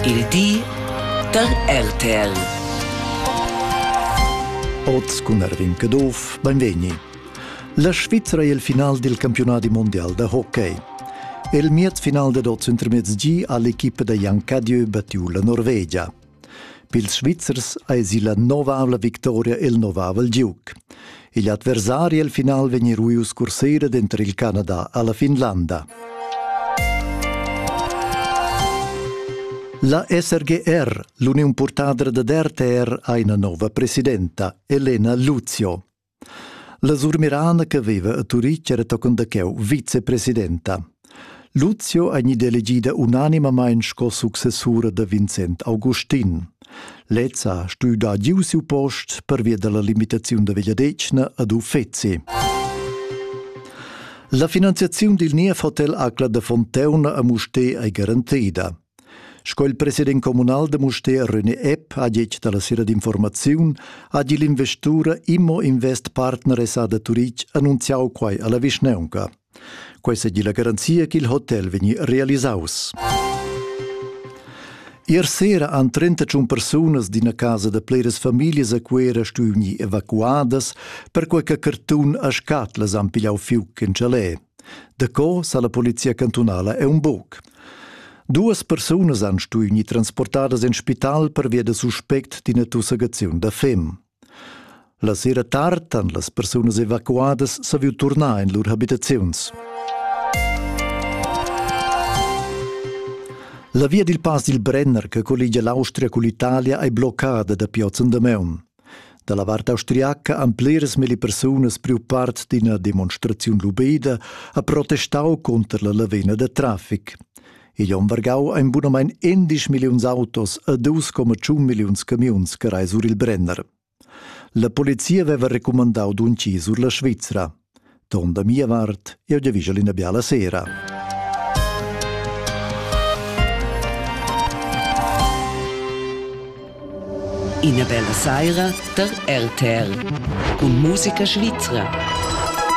Il di da RTL. Oz cun Erwin Caduff, benvegni. La Svizra è il final del campionati mondial da hockey. Il miez final dad oz intermezzi ha l'equipa da Jan Cadieu battiu la Norvegia. Pils Svizzers eisi la novavla victoria el novavel giug. Igl adversari el final vegn ruius cursera denter il Canada alla Finlanda. La SRGR, l'uniun purtadra da RTR, ha ina nova presidenta, Elena Luzio. La surmirana che veva a Turitg era tochen da cheu vicepresidenta. Luzio ei gnida elegida unanimamein sco successura da Vincent Augustin. Lez ha stuiu dar giu siu post pervia dalla limitaziun da vegliadetgna ad uffeci. La finanziaziun dil niev hotel Acla da Fonteuna a Musté ei garantida. Sco il president communal da Mustér René Epp ha detg dalla sera d'informaziun ha igl investura Immo Invest Partner SA da Turitg annunziau quai alla vischnaunca. Quei seigi la garanzia ch'il hotel vegni realisaus. Ier sera han 31 persunas d'ina casa da pleras famiglias a Cuera stuiu gnir evacuadas perquei che cartun a scatlas han pigliau fiuc in chalet. Daco sa la polizia cantunala è un buc. Duas persunas han stuì gnir transportadas in spital pervia da suspect d'ina tussagaziun da fem. La sera tard han las persunas evacuadas saviu turnar in lur habitaziuns. La via dil pass dil Brenner che colligia l'Austria cun l'Italia ei bloccada dapi oz en Damaun. Da la vart austriaca han pliras milli persunas priu part d'ina demonstraziun lubida ha protestau cunter la lavina da traffic. Igl onn vargau ein bunamein 11 milliuns autos e 2,1 milliuns camiuns che rai sur il Brenner. La polizia veva recumandau dunchi sur la Svizra. Ton da mia vart, jeu giavischel ina biala sera. Ina bella saira da RTL. Cun musica svizra.